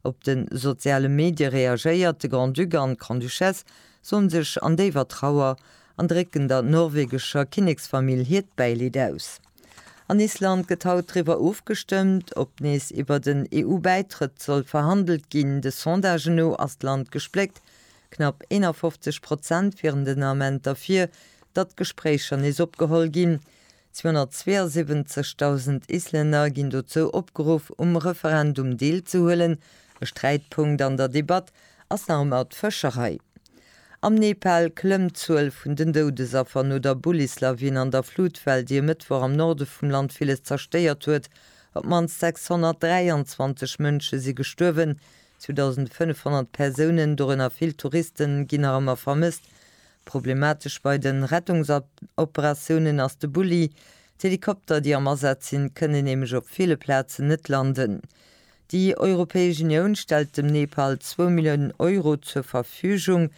Op de soziale Medie reagéiert de Grand-Duc an d'Grande-Duchesse soen sech an déiwer Trauer an drécken der norwegescher Kinneksfamill hiert Bäileed aus. An Island gëtt haut driwwer ofgestëmmt, ob nees iwwert en EU-Bäitrëtt soll verhandelt ginn. De Sondagen no ass d'Land gespléckt, knapp 51 Prozent wieren den Ament derfir, datt d'Gespréicher nees opgeholl ginn. 272.000 Islänner ginn dozou opgeruff, um Referendum deelzehuelen. E Sträitpunkt an der Debatt ass nach ëmmer d'Fëscherei. Am Nepal klëmmt d'Zuel vun den Doudesaffer no der Bullislawin an der Flutwell, déi e Mëttwoch am Norde vum Land villes zerstéiert huet. Op d'mannst 623 Mënsche si gestuerwen, 2.500 Persounen, dorënner vill Touristen, ginn nach ëmmer vermësst. Problematesch bei de Rettungsoperatiounen ass de Bulli. D'Helikopter, déi am Asaz sinn, kënnen nämlech op ville Plazen net landen. Déi Europäesch Unioun stellt dem Nepal zwou Milliounen Euro zur Verfügung.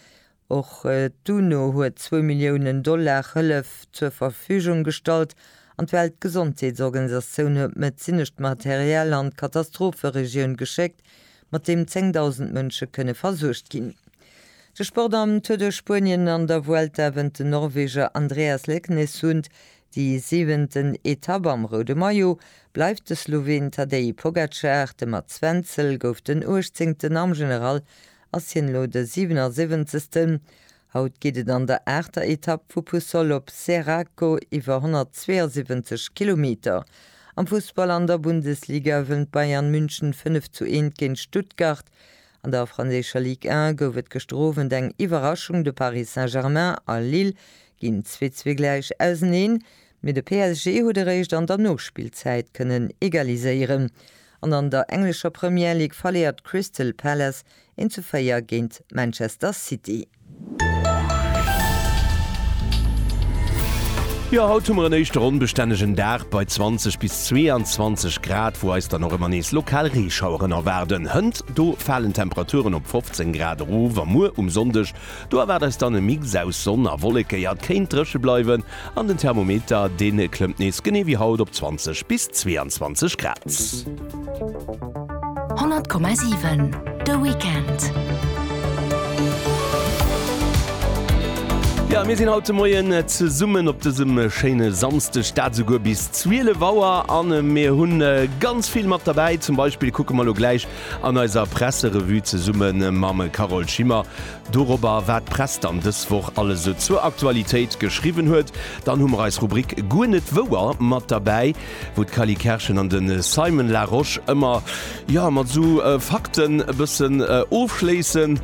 Och d'UNO huet zwou Milliounen Dollar Hëllef zur Verfügung gestallt an d'Weltgesondheetsorganisatioun huet medezinescht Material an d'Katastropheregioun geschéckt, mat deem 10.000 Mënsche kënne versuergt ginn. De Sport am Tour de Spuenien an der Vuelta wënnt den Norweger Andreas Leknessund déi siwenten Etapp. Am roude Maillot bleift de Sloween Tadej Pogacar, de Mats Wenzel gouf den uechtzéngten, am General ass hien elo de siwenersiwwenzegsten. Haut geet et an der aachter Etapp vu Puçol op Serraco iwwer 172 Kilometer. Am Fussball an der Bundesliga ewent Bayern München 5 zu 1 géint Stuttgart. An der franséischer Ligue 1 gouf et gëschter Owend eng Iwwerraschung, de Paris Saint-Germain a Lille ginn 2 zu 2 gläich auseneen. Mee de PSG huet eréischt an der Nospillzäit kënnen egaliséieren an an der englescher Premier League verléiert Crystal Palace 1 zu 4 géint Manchester City. Jo, haut hu mer en éischte ronnbestännegen Dag bei 20 bis 22 Grad, wou eis dann och ëmmer nees lokal Reeschaueren erwaarden. Hënt do falen d'Temperaturen op 15 Grad erof a muer um Sonndeg, do erwaart eis dann e Mix aus Sonn a Wolleke. Jo, et kéint dréche bleiwen. An den Thermometer, dee klëmmt nees genee wéi haut op 20 bis 22 Grad. 100,7 de Weekend. Jo, mir sinn haut de Moien zesummen op dësem schéine Samsdeg, dat esouguer bis 12 Auer an. Mir hunn ganz vill mat derbäi. Zum Beispill kucke mer elo gläich an eiser Presserevue zesumme mam Carole Schimmer Dorobber wat d'Press dann dës Woch alles esou zur Aktualitéit geschriwwen huet. Dann hu mer eis Rubrik Guer net wouer mat derbäi, wou d'Cally Kerschen an de Simon Larosche ëmmer, jo, mat esou Fakten e bëssen ofschléissen,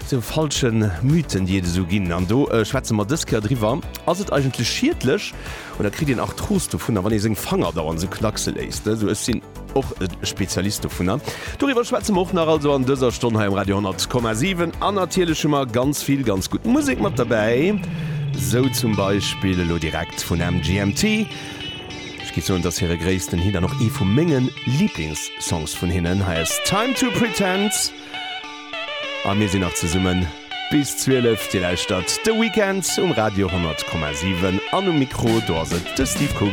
esou falsche Mythen, déi et esou ginn. An do schwätze mer dës Kéier driwwer, Ass et eigentlech schiedlech An da kritt een Arthros dovunner, wann ee seng Fanger dauernd esou knackse léisst. Also ech sinn och e Spezialist dovunner. Doriwwer schwätze mer och nach also an dëser Stonn hei um Radio 10,7. An natierlech hu mer ganz vill ganz gutt Musek mat derbäi, sou zum Beispill elo direkt vun MGMT. Ech géif soen, et ass hire gréissten Hit an och ee vu menge Liblingssongs vun hinnen. Hei ass Time to Pretend. A mir sinn nach zesummen bis 12. Dir lauschtert de Weekend um Radio 100,7 an um Mikro do ass et de Steve Coogan.